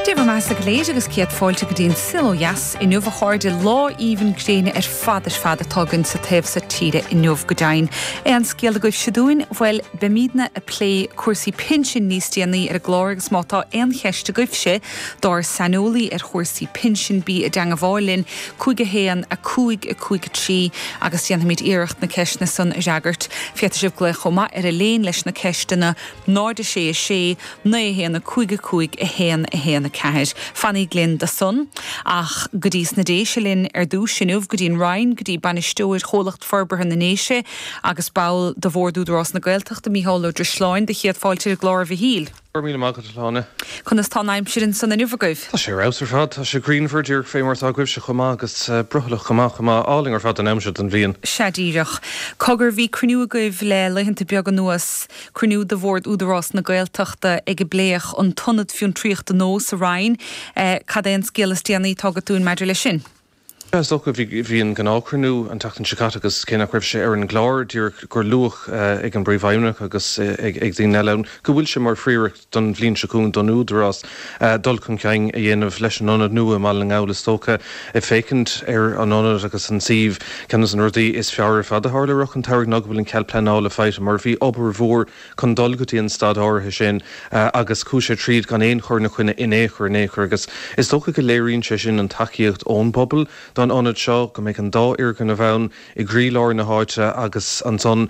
Dé bhur mbeathasa go léir agus céad fáilte go dtí An Saol ó Dheas inniu a chairde lá aoibhinn gréine ar fad ar fad atá againn sa taobh so tíre inniu go deimhin. Aon scéal agaibhse dúinn? Bhuel beimídne a' plé cúrsaí pinsin níos déanaí ar an gclár agus má tá aon cheist agaibhse dár saineolaí ar chúrsaí pinsin bí i dteangmháil linn 51 5 5 3 agus déanfaimid iarracht na ceisteanna san a fhreagairt. Féadfaidh sibh glaoch chomh maith ar Eibhlín leis na ceisteanna 0, 6, 6, 9, 1, 5, 5, 1, 1, 4, Fanaigí linn do san, ach go dtí sna Déise linn ar dtúis, inniu, go dtí an Rinn, go dtí Bainisteoir Chomhlacht Forbartha na nDéise agus ball de Bhord Údarás na Gaeltachta, Mícheál Ó Drisleáin, do chéad fáilte ar an gclár, a Mhichíl. Go raibh míle maith agat, a Shláine. Conas tá an aimsir ansan inniu agaibh? Tá sé ar fheabhas ar fad. Tá sé grianmhar, díreach fé mar atá agaibhse chomh maith, agus brothallach chomh maith, chomh maith. Álainn ar fad an am seo den bhliain. Sea díreach. Cogar, bhí cruinniú agaibh le laethanta beaga anuas. Cruinniú de Bhord Údarás na Gaeltachta agus pléadh an t-ionad fiontraíochta nua sa Rinn. Cad é an scéal is déanaí atá agat dúinn maidir leis sin? Sea, is dócha. Bhí an gnáthchruinniú an tseachtain seo caite agus cé nach raibh sé ar an gclár díreach gur luadh ag an bPríomhfheidhmeannach agus ag daoine eile ann go bhfuil sé mar phríoracht don bhliain seo chugainn don Údarás dul chun cinn a dhéanamh leis an ionad nua i mBaile na nGall, is dócha, ag féachaint ar an ionad agus an suíomh. Ceann de na rudaí is fearr ar fad a tharla i rith an tsamhraidh ná go bhfuil an cead pleanála faighte mar bhí obair mhór chun dul go dtí an staid áirithe sin agus chuaigh sé tríd gan aon chur ina choinne in aon chor in aon chor agus is dócha go léiríonn sé sin an tacaíocht ón bpobal don ionad seo, go mbeidh an dá fhoirgneamh ann. i gcroílár na háite agus ansan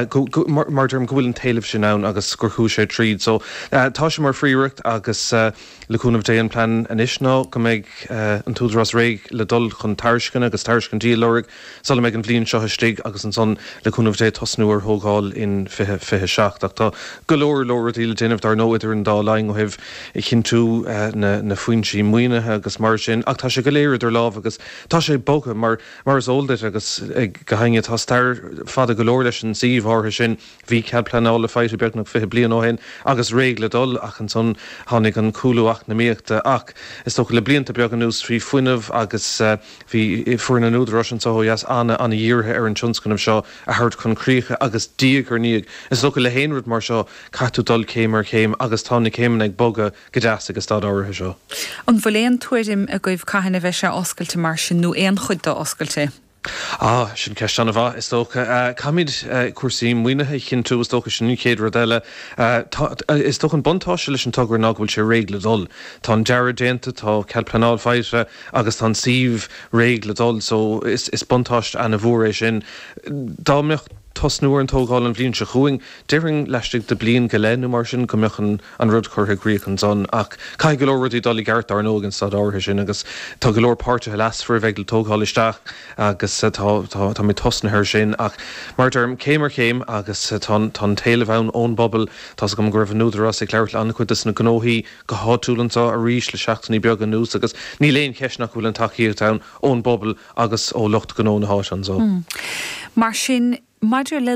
go, go, mar, mar deirim, go bhfuil an t-éileamh sin ann agus gur chuaigh sé tríd. So, tá sé mar phríoracht agus le cúnamh Dé an plean anois ná go mbeidh an tÚdarás réidh le dul chun tairisceana agus tairiscintí a lorg sula mbeidh an bhliain seo istigh agus ansan le cúnamh Dé tosnú ar thógáil in 2027. Ach tá go leor, leor rudaí le déanamh dar ndóigh idir an dá linn ó thaobh chinntiú na, na foinsí maoinithe agus mar sin ach tá sé go léir idir lámha agus tá sé bogtha mar Mar is eol duit, agus go háirithe, tá stair fada go leor leis an suíomh áirithe sin. Bhí cead pleanála faighte beagnach fiche bliain ó shin agus réidh le dul, ach ansan tháinig an cúlú eacnamaíochta. Ach is dócha le blianta beaga anuas bhí fuinneamh agus bhí foireann an Údaráis anso ó dheas ana-ana-dhírithe ar an tionscnamh seo a thabhairt chun críche agus diaidh ar ndiaidh, is dócha le haon rud mar seo, caithfidh tú dul céim ar chéim agus tá na céimeanna ag bogadh. Go deas ag an staid áirithe seo. An bhfuil aon tuairim agaibh cathain a bheidh sé oscailte mar sin, nó aon chuid de oscailte? Á, sin ceist an-mhaith, is dócha. Caithfimid cúrsaí maoinithe a chinntiú, is dócha, sin an chéad rud eile. Tá, is dócha, an buntáiste leis an togra ná go bhfuil sé réidh le dul. Tá an dearadh déanta, tá cead pleanála faighte agus tá an suíomh réidh le dul so is buntáiste ana-mhór é sin. Dá mbeadh tosnú ar an tógáil an bhliain seo chugainn, déarfainn laistigh de bhliain go leith nó mar sin go mbeadh an an rud curtha i gcrích ansan. Ach caithfidh go leor rudaí dul ina gceart, dar ndóigh, ag an staid áirithe sin agus tá go leor páirtithe leasmhara a bheidh le tógáil isteach agus tá táimid tosnaithe air sin ach, mar a deirim, céim ar chéim agus tá tá an t-éileamh ann ón bpobal. Tá's agam go raibh an tÚdarás ag labhairt le an-chuid des na gnóthaí go háitiúil anso arís le seachtainí beaga anuas agus níl aon cheist nach bhfuil an tacaíocht ann ón bpobal agus ó lucht gnó na háite anso. Mar sin, maidir le.